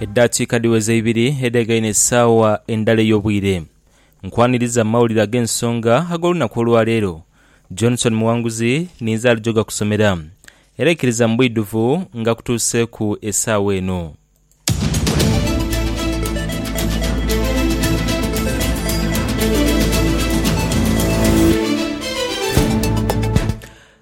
Edaakiika dhiweza ibiri edhegaine esaawa endala ey'obwire. Nkwaniriza mu mawulire ag'ensonga ag'olunaku olwaleero. Johnson Muwanguzi ninze alijoga kusomera. Era ikiriza mu bwidhuvu nga kutuuseeku esaawa eno.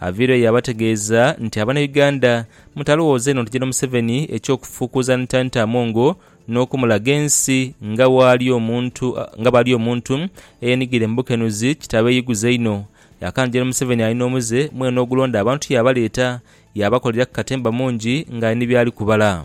Aviiro yabategeeza nti abana Uganda mutalowooza inho nti Gen Museveni eky'okufuukuuza Ntanta Amongo n'okumulaga ensi nga bwali omuntu nga bwali omuntu eyenigire mu bukenuzi kitabeeyiguza inho. Yakanze Gen Museveni alina omuze mwene ogulonda abantu yaabaleeta yaabakolera ku katemba mungi ng'ali ni byali kubala.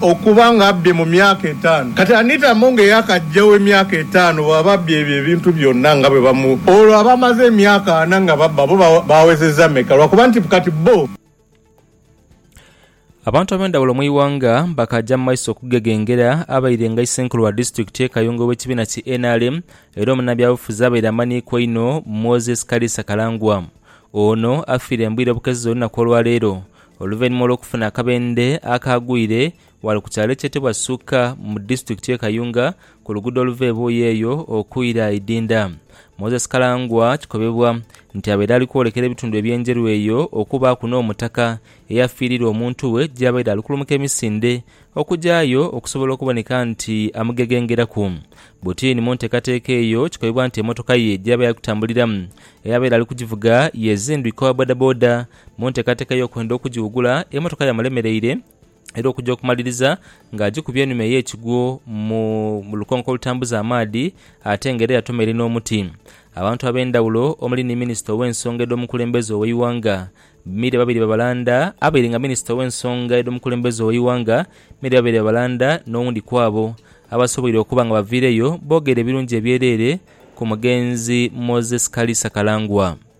Okuba nga abbye mu myaka etaanu, kati Anita Among eyakajjawo emyaka etaanu bw'aba abbye ebyo ebintu byonna nga bwe bamu, olwo abamaze emyaka ana nga babba bo baawezezza meka? Lwakuba nti kati bbo. Abantu ab'endhawulo mu ighanga bakaja mu maiso okugegengera abairenga Isenkulu wa disitulikiti ye Kayunga ow'ekibiina ki nrm era omunabyabufuzi abaire amanhiikwa einho Moses Kaliisa Kalangwa. Ono afiire mbwire bukeze olunaku olwaleero oluvainhuma olw'okufuna akabendhe akaagwire ghale ku kyalo ekyetebwa Suka mu disitulikiti ye Kayunga ku luguudo oluva e Buuyi eyo okwira Idinda. Moses Kalangwa kikobebwa nti abaire ali kwolekera ebitundu eby'e Njeru eyo okubaaku n'omutaka eyafiirirwa omuntu we gyabaire ali kulumuka emisinde okugyayo okusobola okuboneka nti amugegengeraku butini. Mu ntekateeka eyo kikobebwa nti emotoka ye gyabaire ali kutambuliramu eyabaire ali kugivuga yezindwika owa bodaboda Mu nteekateeka ey'okwenda okugiwugula, emotoka yamulemereire era okuja okumaliriza nga agikubye enhuma ey'ekigwo mu lukonko olutambuza amaadhi ate nga era yatomeire n'omuti. Abantu ab'endhawulo omuli ni minisita ow'ensonga edh'omukulembeze ow'eighanga, Milly Babirye Babalanda abaire nga minisita ow'ensonga edh'omukulembeze ow'eighanga, Milly Babirye Babalanda n'owundi kwabo abasoboire okuba nga baviireyo boogera ebirungi ebyereere ku mugenzi Moses Kaliisa Kalangwa.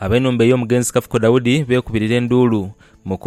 Ab'enhumba ey'omugenzi Kafuko Daudi beekubirira enduulu mu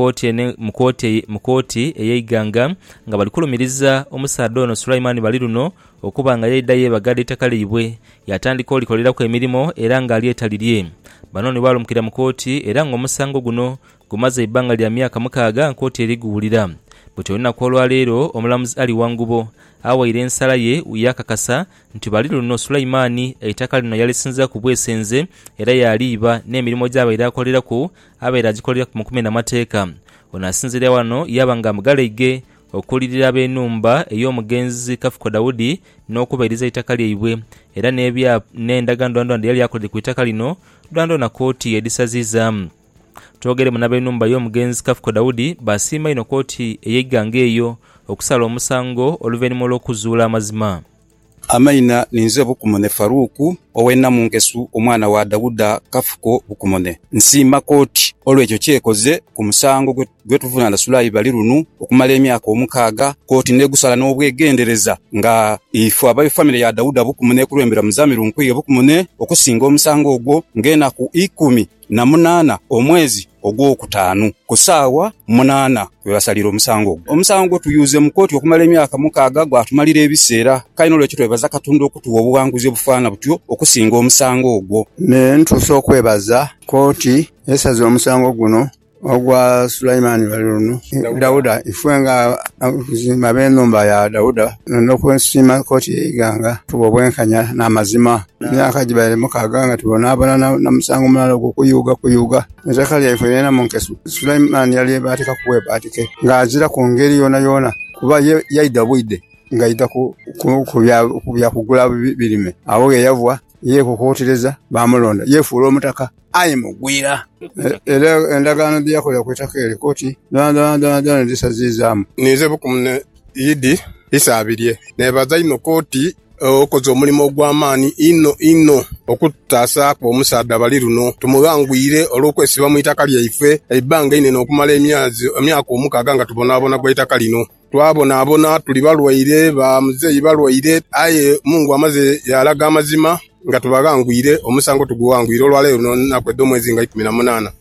kooti ey'eighanga nga bali kulumiriza omusaadha ono Sulaiman Baliruno okuba nga yaidha yeebagala eitaka lyaibwe yaatandika olikoleraku emirimo era ng'alyeta lirye. Bano ni baalumukira mu kooti era ng'omusango guno gumaze eibbanga lya myaka mukaaga nga kooti eri guwulira buti olunaku olwaleero omulamuzi Ali Wangubo awaire ensala ye yaakakasa nti bali luno Sulaimani eitaka lino yalisinziraku bwesenze era yaaliiba n'emirimo gy'abaire akoleraku abaire agikoleraku mu kumena mateeka. Ono asinziira wano yaaba nga amugalaige okuulirira ab'enhumba ey'omugenzi Kafuko Daudi n'okubairiza eitaka lyaibwe era n'ebyapa n'endagaano dhoonadhoona dheyali akoleire ku itaka lino dhoonadhoona kooti yedhisaziizaamu. Twogeremu n'ab'enhumba y'omugenzi Kafuko Daudi baasiima inho kkooti ey'eighanga eyo okusala omusango oluvainhuma olw'okuzuula amazima. Amaina ninze Bukumone Faruku ow'e Namunkesu omwana wa Dauda Kafuko Bukumone. Nsiima kkooti olw'ekyo ky'ekoze ku musango gwe tuvunaana Sulayi Balirunu okumala emyaka omukaaga, kkooti n'egusala n'obwegendereza nga ife aba famire ya Dauda Bukumone ekulembera Muzamiru Nkwiye Bukumone okusinga omusango ogwo ng'enaku ikumi. na munaana omwezi ogwokutaanu, ku saawa munaana kwe basalira omusango ogwo. Omusango gwe tuyuuze mu kooti okumala emyaka mukaaga gwatumalira ebiseera, kale n'olwekyo twebaza Katonda okutuwa obughanguzi obufaana butyo okusinga omusango ogwo. Me ntuuse okwebaza kooti esaze omusango guno. Ogwa Sulaimani ghali luno, Dauda, ife nga abakuzimba ab'enhumba ya Dauda, n'okwesiima koti ey'eighanga, tuba obwenkanya n'amazima. Emyaka gibaire mukaaga nga tubonaabona na musango mulala ogwo kuyuuga kuyuuga eitaka lyaife lyonalyona mu nkesu. Sulaimani yalyebaatika ku bwebaatike nga aziraku ngeri yoonayoona, kuba ye yaidha bwidhe ng'aidha ku bya kugula birime. Agho ghe yava yeekukuutireza, baamulonda, yeefuula omutaka. aye mugwira. Era endagaano dhe yakola ku itaka eryo koti dhoonadhoonadhoonadhoona ndidhisaziizaamu. Ninze bukumu ni idi isaabirye. Neebaza inho koti, okoze omulimo ogw'amaani inho inho okututaasaaku omusaadha bali luno. Tumughangwire olw'okwesiba mu itaka lyaife eibbanga einene okumala emyaka omukaaga nga tubonaabona gwa itaka lino. Twabonabona tuli balwaire, ba muzeeyi balwaire, aye Mungu amaze yaalaga amazima nga tubaghangwire, omusango tugughangwire olwa leero luno nnaku edh'omwezi nga ikumi na munaana.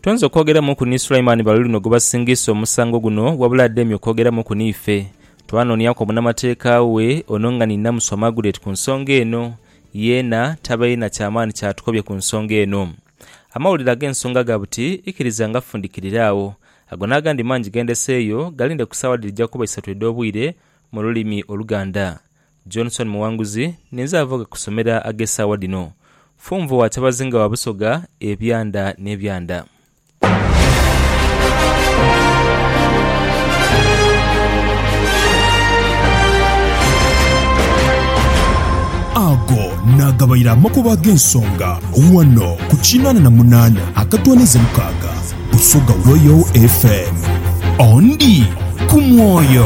Twenze okwogeramuku ni Sulaimani bali luno gwebasingiisa omusango guno wabula ademye okwogeramuku niife. Twanooniaku omunamateeka we ono nga ni Namusu Amagulet ku nsonga eno, yeena tabaire na kyamaani kyatukobye ku nsonga eno. Amawulire ag'ensonga ga buti ikiriza nga fundikirire agho. Ago n'agandi mangi ge ndeseeyo galinde ku saawa dhirija kuba isatu edh'obwire mu lulimi Oluganda. Johnson Muwanguzi, Ninze ava ghe kusomera ag'esaawa dhino. Funvu wa Kyabazinga wa Busoga, Ebyanda n'Ebyanda. naagabaire amakubo ag'ensonga ghano ku kinaana na munaana akatwaniza mukaaga Busoga Royal FM. Ondi ku mwoyo.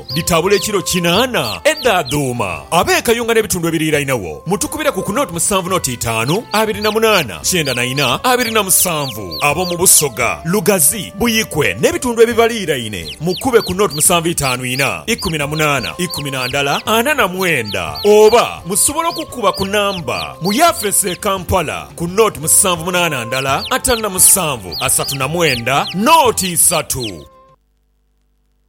Dhitabula ekiro kinaana edha dhuuma. Ab'ekayunga n'ebitundu ebiriirainagho mutukubire ku ku noti musanvu noti itaanu abiri na munaana kyenda na ina abiri na musanvu. Ab'omu Busoga, Lugazi, Buikwe n'ebitundu ebibaliiraine mukube ku noti musanvu itaanu ina ikumi na munaana ikumi na ndala ana na mwenda. Oba musobola okukuba ku namba mu yafeesi e Kampala ku noti musanvu munaana ndala ataanu na musanvu asatu na mwenda noti isatu.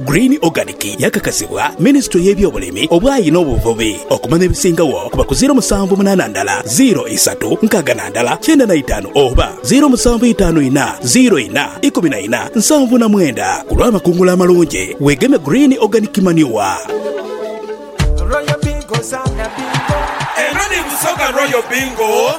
Green Organic yakakasibwa Minisitule y'ebyobulimi, obwayi n'obuvubi okumanya ebisingagho kuba ku ziiro musanvu munaana ndala ziiro isatu nkaaga na ndala kyenda na itaanu oba ziiro musanvu itaanu ina ziiro ina ikumi na ina nsanvu na mwenda ku lw'amakungula amalungi. Weegeme Green Organic Manure. Royal Bingo, Zaana Bingo. Eno ni Busoga Royal Bingo.